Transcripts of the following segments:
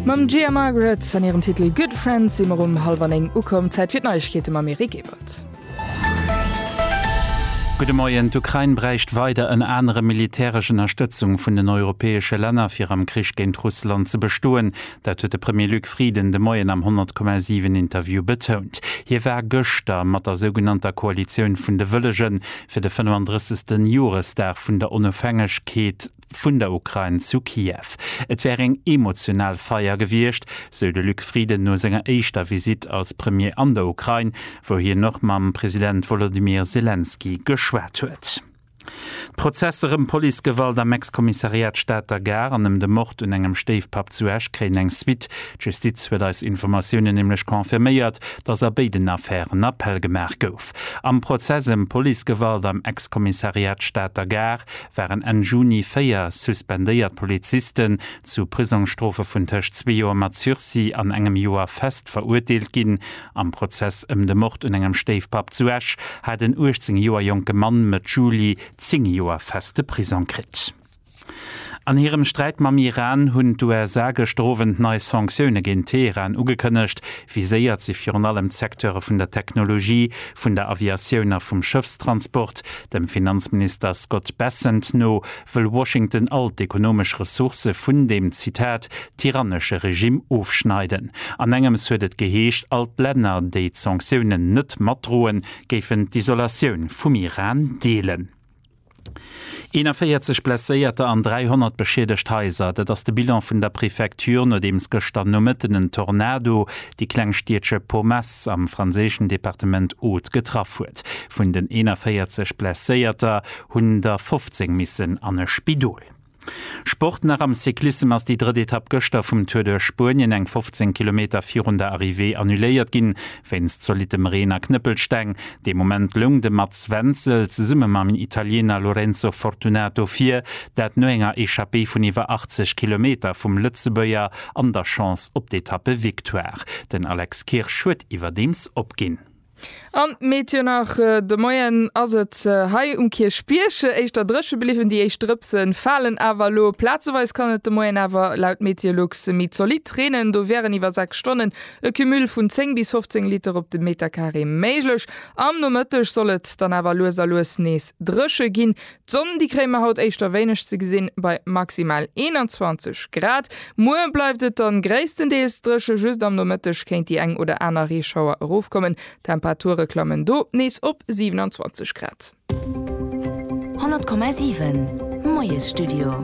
Mam Gia Margaret an hirem Titel Good Friends si mer um hallwer 9 ukomm. Zäit fir d'Neiegkeete mam Eric Ebert. Gudde Moien, D'Ukrain bräicht weider ënner anerem militäresch Ënnerstëtzung vun den europäesche Länner, fir am Krich géint Russland ze bestoen. Dat huet de Premier Luc Frieden de Moien am 100,7 Interview betount. Hie war gëschter mat der sougenannter Koalitioun vun de Wëllegen fir de 35. Joresdag vun der Onofhängegkeet, vun der Ukrain zu Kiew. Et wär eng emotional Feier gewiescht, sou de Luc Frieden no senger éischter Visitt als Premier an der Ukrain, wou hien och mam President Wolodymyr Selenskyj geschwat huet. D'Prozesser ëm Policegewalt am Ex-Kommissariat Stater Gare an ëm de Mord un engem Stéifpapp zu Esch kréien eng Suite. D'Justiz huet eis Informatiounen nämlech confirméiert, datt a béiden Affären Appell gemaach gouf. Am Prozess ëm Policegewalt am Ex-Kommissariat Stater Gare waren Enn Juni véier suspendéiert Polizisten zu Prisongsstrofe vun tëscht zwee Joer mat Sursis an engem Joer fest verurteelt ginn. Am Prozess ëm de Mord un engem Stéifpapp zu Esch hat en 18 Joer jonke Mann Mëtt Juli zéng Joer feste Prisong kritt. An hirem Sträit mam Iran hunn d'USA gëschter Owend nei Sanktioune géint Teheran ugekënnegt, Viséiert si virun allem d'Secteure vun der Technologie, vun der Aviatioun a vum Schëffstransport. Dem Finanzminister Scott Bessent no wëll Washington all d'ekonomesch Ressourcë vun deem, Zitat, tyrannesche Regimm ofschneiden. An engems huet et geheescht, all d'Länner, déi d'Sanktiounen net matdroen, géifen d'Isolatioun vum Iran deelen. 41 Blesséierter an 300 beschiedegt Haiser, dat ass de Bilan vun der Prefecture, nodeems gëschter Nomëtten en Tornado déi kleng Stiedche Pomesse am franséischen Departement Aude getraff huet. Vun den 41 Blesséierter hunn der 15 missen an e Spidol. Sport nach am Cyclissem ass déi drëtt Etapp gëschter vum Tour duerch Spuenien eng 15 Kilometer virun der Arrivée annuléiert ginn, wéinst zolittem Reen a Knëppelsteng. Dee Moment loung de Mats Wenzel zesumme mam Italiener Lorenzo Fortunato vir, dat no enger Echappée vun iwwer 80 Kilometer vum Lëtzebuerger an der Chance op d'Etappevictoire. Den Alex Kirsch huet iwwerdeems opginn. An meet jo nach de Moien ass et hei um Kierchbierg éischter dréche bliwwen, déi éischt Drëpse falen awer elo. Plazeweis kann et de Moien awer laut Meteolux méi zolidd reenen, do wären iwwer 6 Stonnen e Cumul vun 10 bis 15 Liter op de Meterkaree méiglech. Am Nomëtteg soll et dann awer lues a lues nees dréche ginn. D'Sonn, déi kréie mer haut éischter wéineg ze gesinn, bei maximal 21 Grad. Muer bleift et dann gréisstendeels dréche, just am Nomëtteg kéint déi eng oder aner Reeschauer erofkommen. D'Temperature klammen do nees op 27 Grad. 100,7 Moiesstudio.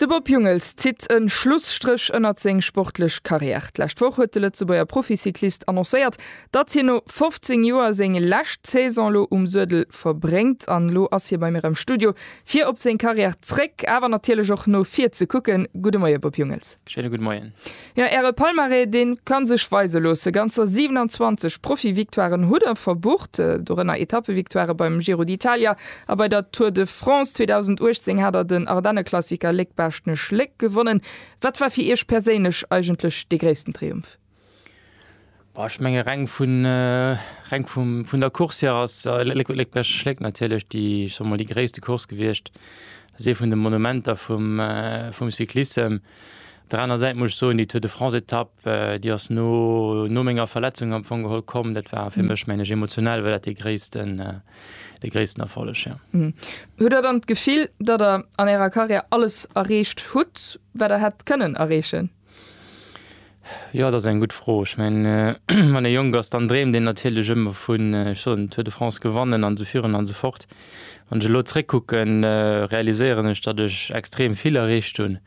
De Bob Jungels zitt e Schlusstréch ënnert seng sportlech Karriär. D'lescht Woch huet de Lëtzebuerger Proficyclist annoncéiert, Datt hien no 15 Joer seng lescht Saison lo um Suedel verbréngt, an lo ass hie bei mir am Studio fir op seng Karriär zréck, awer natierlech och no vir ze kucken. Gudde Moie Bob Jungels. Schéine gudde Moien. Jo, äre Palmarès dee ka sech weise loosse, ganzer 27 Profi-Victoiren hutt der verbucht, dorënner Etappe-Victoirë beim Giro d'Italia a bei der Tour de France. 2018 hat der den Ardenneklassiker Léck-Baaschtnech-Léck gewonnen. Wat war fir Iech perséinlech eigentlech dee gréissten Triumph? Ech menge reng vun der Course hier ass Léckbierg-Schléck natierlech déi gréisste Course gewiescht. Dat ass ee vun de Monumenter vum Cyclissem. Op der aner Säit muss ech soen, déi Tour de France-Etapp, déi ass no menger Verletzung am Fong geholl komm. Dat war fir mech, mengen ech, emotional war dat dee gréissten Erfolleg, jo. Hutt Der dann d'Gefill, datt Der an Ärer Karriär alles erreecht hutt, wat Der hätt kënnen erreechen? Jo, dat ass eng gutt Fro. Ech mengen, wann ee jonk ass, dann dreemt een natierlech ëmmer vun, ech soen, Tour de France gewannen an esou virun an esou fort. Wann ech elo zréckkucken, realiséieren ech, datt ech extrem vill erreecht hunn.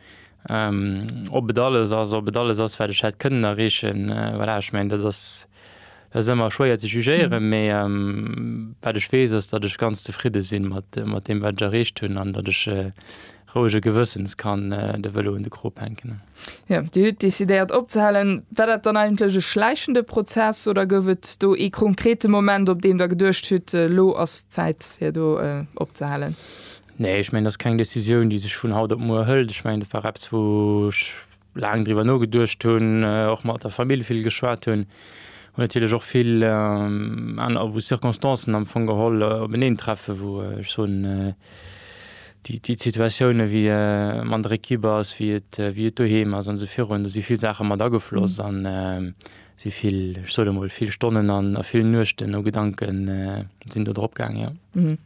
Ob et alles ass, ob et alles ass, wat ech hätt kënnen erreechen, voilà, ech mengen, dat ass, Et ass ëmmer schwéier ze jugéieren, mee wat ech weess ass, datt ech ganz zefridde si mat deem, wat ech erreecht hunn an datt ech rouege Gewëssens kann de Vëlo un de Krop hänken. Jo, Dir hutt decidéiert opzehalen. War dat dann eigentlech e schläichende Prozess oder gouf et do ee konkrete Moment, op deem Der geduecht hutt, elo ass d'Zäit fir do opzehalen? Nee, ech mengen, dat ass keng Decisioun, déi sech vun haut op muer hëlt. Ech mengen, dat war eppes, wou ech laang driwwer nogeduecht hunn, och mat der Famill vill geschwat hunn, hunn natierlech och vill aner, wou Circonstancen am Fong geholl openeen treffen, wou ech soen, déi, déi Situatiounen, wéi et an der Ekipp ass, wéi et, wéi et doheem ass an esou virun, do si vill Saache mat agefloss an si vill, ech soen emol vill Stonnen an a vill Nuechten no Gedanke sinn do drop gaang, jo. Hm,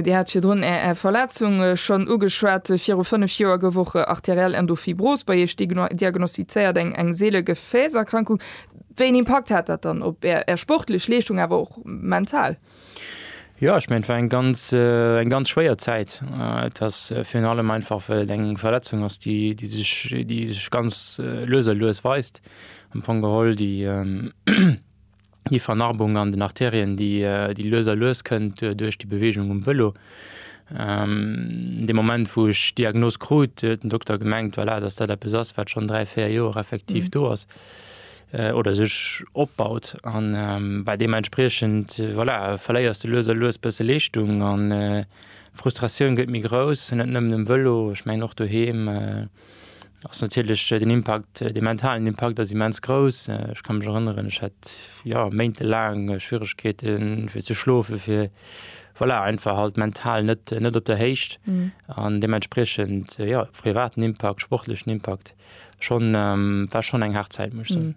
Dir hat virdrun Är Verletzung schonn ugeschwat. Viru fënnef Joer gouf och arteriell Endophibrose bei Iech diagnostizéiert, eng eng seele Gefääserkrankung. Wéi en Impakt hat dat dann op Är Är sportlech Leeschtung, awer och mental? Jo, ech mengen, et war eng ganz, eng ganz schwéier Zäit. Et ass virun allem einfach, well et eng Verletzung ass, déi, déi sech, déi sech ganz lues a lues weist. Am Fong geholl déi, déi Vernarbung an den Artärien, déi, déi lues a lues kënnt duerch déi Beweegung um Vëlo. Dee Moment, wou ech d'Diagnos krut, huet den Dokter gemengt, voilà, datt dat eppes ass, wat schonn dräi, véier Joer effektiv do ass. oder sech opbaut an bei deem entspriechend voilà verléiers de lues a lues bësse Leeschtung an Frustratioun gëtt méi grouss, net nëmmen um Vëlo, ech mengen och doheem ass natierlech den Impakt, de mentalen Impakt ass immens grouss. Ech ka mech erënneren, ech hat jo méintelaang Schwieregkeeten fir ze schlofen, fir voilà einfach halt mental net net op der Héicht an deementspriechend jo privaten Impakt, sportlechen Impakt. Schonn war schonn eng haart Zäit, muss ech soen.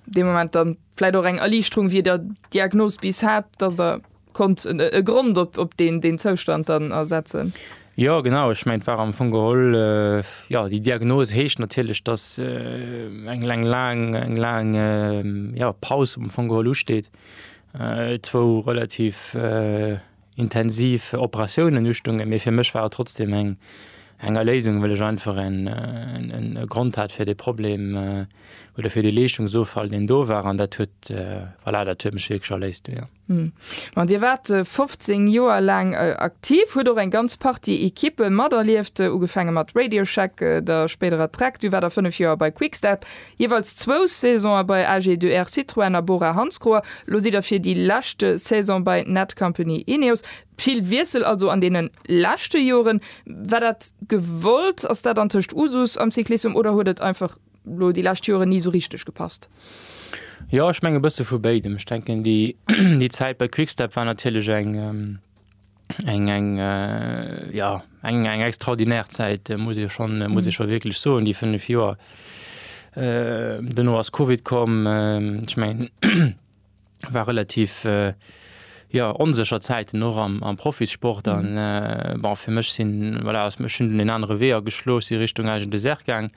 Dee Moment dann vläit och eng Erliichterung, wéi der d'Diagnos bis hat, dass der konnt e Grond op deen deen Zoustand dann ersetzen? Jo, genau, ech mengen, et war am Fong geholl, jo, déi Diagnos heescht natierlech, dass eng laang, eng laang, jo, Paus am Fong geholl usteet, zwou relativ, intensiv Operatiounen ustunge, mee fir mech war et trotzdem eng eng Erléisung, well ech einfach en e Grond hat fir dee Problem oder fir dee Leeschtungsoffall, deen do war, an dat huet, voilà, dat huet mech wierklech erléist du, jo. Hm. Dir waart 15 Joer laang aktiv, hutt och eng ganz Partie Ekippe materlieft, ugefaange mat Radio Shack, der spéiderer Track, du war der 5 Joer bei Quick Step, Jeeweils zwou Saisonë bei AG2R Citroën a Bora-Hansgrohe, lo sidd der fir déi lescht Saison bei Netcompany Ineos. Vill Wiessel also an deene leschte Joren. War dat gewollt? Ass dat antëscht Usus am Cyclissem oder huet et einfach lo déi lescht Joren ni sou richteg gepasst? Jo, ech mengen e bësse vu béidem. Ech denken déi Zäit bei Quick-Step war natierlech eng. eng eng ja eng eng extraordinär Zäit äh, muss e schon äh, muss e schon wierklech soen, déi fënnef Joer. Äh, Duerno ass Covid komm, äh, ech mengen war relativ äh, ja, onsécher Zäiten och am, am Profissport an mhm. äh, bon, fir mech sinn voilà, ass mech hunn den anere Wee ageschloss, si Richtung Agen Dessert gaang.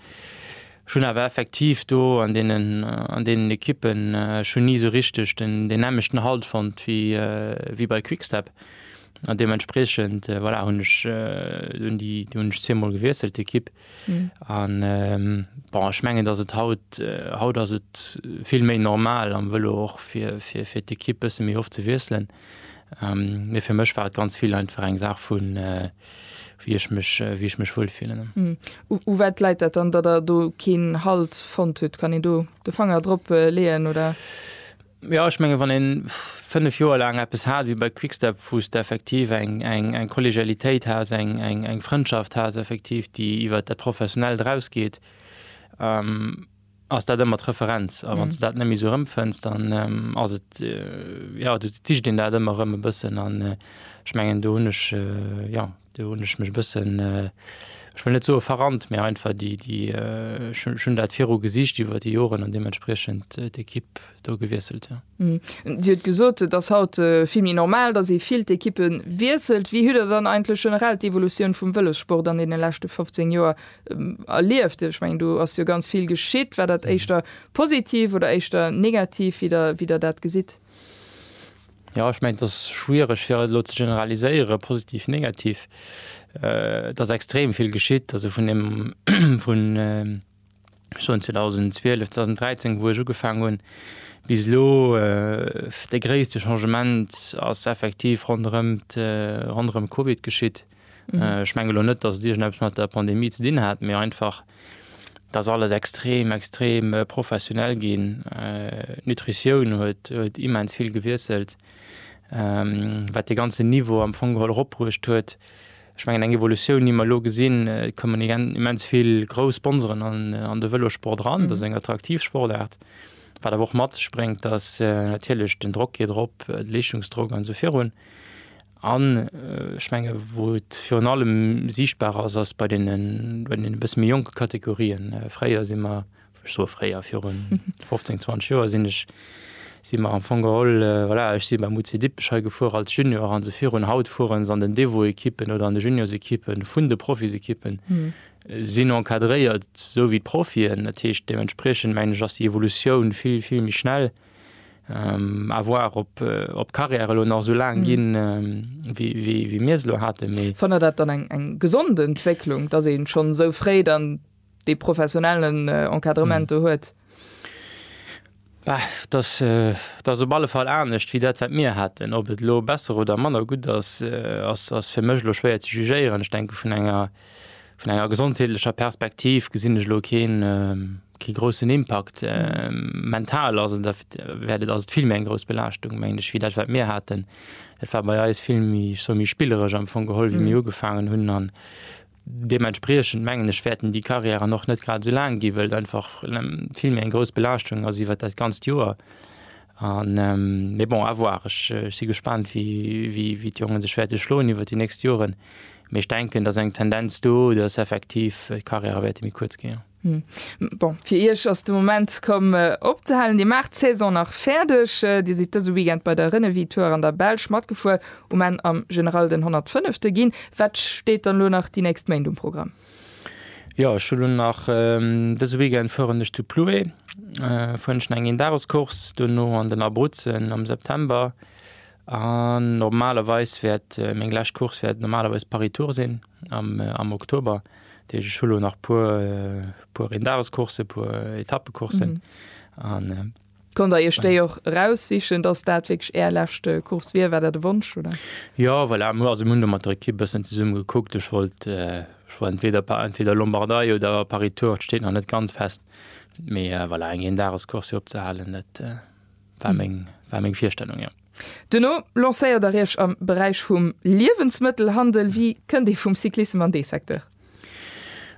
Ech hunn awer effektiv do an deenen Ekippen, ech hunn ni esou richteg deenelmeschten Halt fonnt wéi bei Quick Step an deementspreechend, voilà, hunn ech zweemol gewiesselt d'Ekipp. An bon, ech mengen, datt et haut, haut ass et vill méi normal am Vëlo och fir d'Ekipp bësse méi oft ze wiesselen. Mee fir mech war et ganz vill einfach eng Saach vun wéi ech mech wéi ech mech wuel fillen. U wat läit dat dann, datt der do keen Halt fonnt hutt? Kann een do de Fanger drop leeën oder? Jo ech menge wann ee 5 Joer laang eppes hat wéi bei Quick-Step, wou s de effektiv eng eng eng Kollegialitéit has, eng eng eng Frëndschaft has effektiv déi iwwer dat Professionellt erausgeet, ass dat ëmmer d'Referenz. A wann s de dat net méi esou erëmfënns, dann ass et, jo, du sicht een dat ëmmer erëm e bëssen. An ech mengen, do hunn ech, jo, do hunn ech mech e bëssen, ech wëll net soe verrannt, mä einfach déi, déi, ech hunn dat viru gesicht iwwer déi Joren an deementspriechend d'Ekipp, do gewiesselt. Dir hutt gesot, et ass haut vill méi normal, datt ee vill d'Ekippe wiesselt. Wéi hutt Der dann eigentlech generell d'Evolutioun vum Vëlossport an deene leschte 15 Joer erlieft? Ech mengen, do ass jo ganz vill geschitt. War dat éischter positiv oder éischter negativ, wéi Der dat gesitt? Jo, ech mengen, et ass schwiereg fir et elo ze generaliséieren, positiv, negativ. Et ass extrem vill geschitt, also vun deem, vun. schonn 2012, 2013, wou ech ugefaangen hunn, bis elo, dee gréisste Changement ass effektiv ronderëm ronderëm Covid geschitt. Ech menge lo net, datt et iergendeppes mat der Pandemie ze dinn hat, mee einfach, datt alles extrem extrem professionell ginn. D'Nutritioun huet huet immens vill gewiesselt, wat dee ganzen Niveau am Fong geholl eropbruecht huet. Ech mengen, eng Evolutioun, déi mer elo gesinn, et kommen immens vill grouss Sponsoren an de Vëlossport eran. Dat ass eng attraktiv Sportaart, wat awer och mat sech bréngt, datt natierlech den Drock geet erop, de Leeschtungsdrock an esou virun. An ech menge wou et virun allem siichtbar ass, ass bei deenen e bësse méi jonke Kategorien. Fréier si mer ech soe fréier, viru 15, 20 Joer sinn ech, si mer am Fong geholl, voilà, ech si beim UC Dippech hei gefuer als Junior an esou virun. Haut fueren se an den Devo-Ekippen oder an de Juniorsekippe vun de Profisekippen, sinn encadréiert esou wéi d'Profien. Dat heescht, deementspriechend mengen ech, ass déi Evolutioun vill, vill méi schnell. À voir, ob, ob d'Carrièrë elo nach esou laang ginn, wéi mir se elo haten. Mee. Fannt Der dat dann eng, eng gesond Entwécklung, dass ee schonn esou fréi dann dee professionellen Encadrement do huet? Dat ass op alle Fall anescht wéi dat, wat mir haten. Ob et elo besser oder manner gutt ass, ass fir mech elo schwéier ze jugéieren. Ech denke vun enger vun enger gesondheetlecher Perspektiv gesinn ech elo keen kee groussen Impakt. Mental ass et wäert et ass et vill méi eng grouss Belaaschtung mengen ech wéi dat, wat mir haten. Et war bei eis vill méi ech soe méi spilleresch am Fong geholl, wéi mir ugefaangen hunn Deementspriechend mengen ech wäerten déi Carrièren och net grad esou laang ginn, wëll et einfach vill méi eng grouss Belaaschtung ass iwwert dat ganzt Joer. An mee bon, à voir. Ech si gespaant wéi d'Jongen sech wäerte schloen iwwert déi nächst Joren, mee ech denken et ass eng Tendenz do, datt effektiv d'Carrièrë wäerte méi kuerz ginn. Hm. Bon, fir Iech ass de Moment komm opzehalen. Dir maacht d'Saison nach fäerdeg. Dir sidd dëse Weekend bei der Renewi Tour an der Belsch matgefuer, um Enn am General den 105. ginn. Wat steet dann elo nach déi nächst Méint um Programm? Jo, ech hu lo nach, dëse Weekend fueren ech zu Plouay, fueren ech nach eng Een-Dages-Course, duerno an den Abruzzen am September an normalerweis wäert meng lescht Course wäert normalerweis Paris-Tours sinn. am Oktober, Deeg ech hu lo nach puer puer Eendagescourse, puer Etappecoursen an. Konnt der Iech déi och eraussichen, dass dat wierklech Är lescht Course wier? War dat e Wonsch oder? Jo, voilà, mir hu do mat der Ekipp e bëssen zesumme gekuckt. Ech wollt entweder entweder Lombardei oder Paris-Tour, et steet nach net ganz fest, mee voilà, eng Eendagescourse opzehalen, dat war meng war meng Virstellung, jo. Duerno lancéiert der iech am Beräich vum Liewensmëttelhandel. Wéi kënnt ee vum Cyclissem an dee Secteur?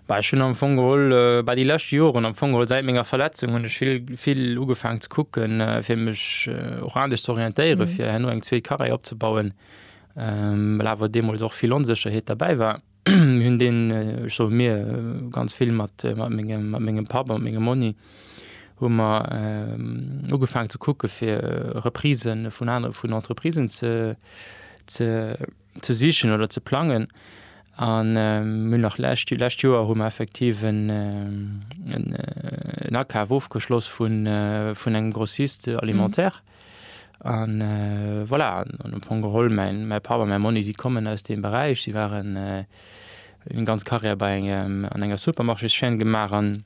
Bah ech hunn am Fong geholl bah déi lescht Joren, am Fong geholl säit menger Verletzung, hunn ech vill vill ugefaangen ze kucken, fir mech och anescht ze orientéieren, fir herno eng zweet Carrière opzebauen, well awer deemools och vill Onsécherheet derbäi war. hunn deen, ech soll mir, ganz vill mat mengem, mat mengem Papp a mengem Monni hu mer ugefaangen ze kucke fir Reprisë vun anere vun Entreprisen ze ze ze sichen oder ze plangen. An mir hunn nach lescht Joer, lescht Joer hu mer effektiv en en Akaf ofgeschloss vun vun engem Grossiste alimentaire. An voilà, an am Fong geholl, mäin Papp a mäi Monni, si kommen aus deem Beräich, si waren, hunn eng ganz Karriär bei engem, an enger Supermarchés-Chaîne gemaach an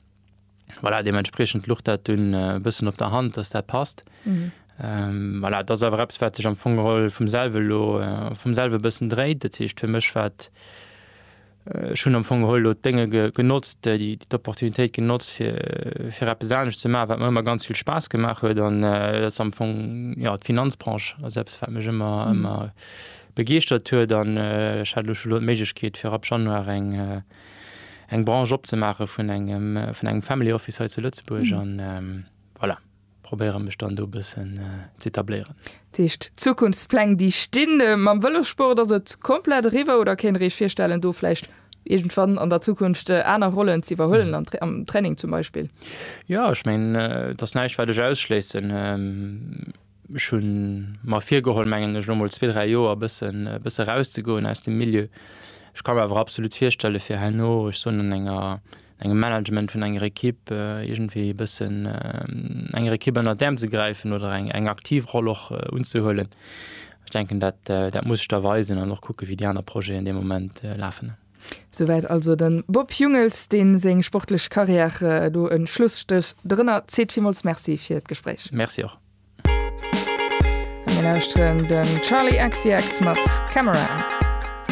voilà, deementspriechend luch dat dunn e bëssen op der Hand, dass dat passt. Voilà, et ass awer eppes, wat sech am Fong geholl vum selwe lo, vum selwe e bëssen dréit. Dat heescht, fir mech war et, Ech hunn am Fong geholl elo d'Dénge genotzt, déi d'Opportunitéit genotzt, fir, fir eppes anescht ze maachen, wat mer ëmmer ganz vill Spaass gemaach huet. An dat ass am Fong, jo, d'Finanzbranche ass eppes, wat mech ëmmer, ëmmer begeeschtert huet. An ech hat elo scho elo d'Méiglechkeet, fir ab Januar eng, eng Branche opzemaache vun engem, vun engem Family Office hei zu Lëtzebuerg. An voilà. probéiere mech dann do bëssen ze etabléieren. Dat heescht Zukunftspläng déi stinn mam Vëlossport, ass et komplett eriwwer oder kéint der Iech virstellen do vläicht iergendwann an der Zukunft aner Rollen ze iwwerhuelen an am Training zum Beispill? Jo ech mengen et ass näischt wat ech ausschléissen. Ech hu mer virgeholl mengen ech lo mol zwee, dräi Joer e bëssen e bësse rauszegoen aus dem Milieu. Ech ka mer awer absolut virstelle fir herno, ech soen an enger engem Management vun enger Ekipp iergendwéi e bëssen enger Ekipp ënnert d'Äerm ze gräifen oder eng, eng aktiv Roll och unzehuelen. Ech denken, dat, dat muss ech da weisen an och kucke wéi déi aner Projeten dee Moment lafen. Souwäit also de Bob Jungels, dee seng sportlech Karriär do e Schlusstréch drënner zitt. Villmools Merci fir d'Gespréich. Merci och. A mir lauschteren de Charli XCX mat Camera.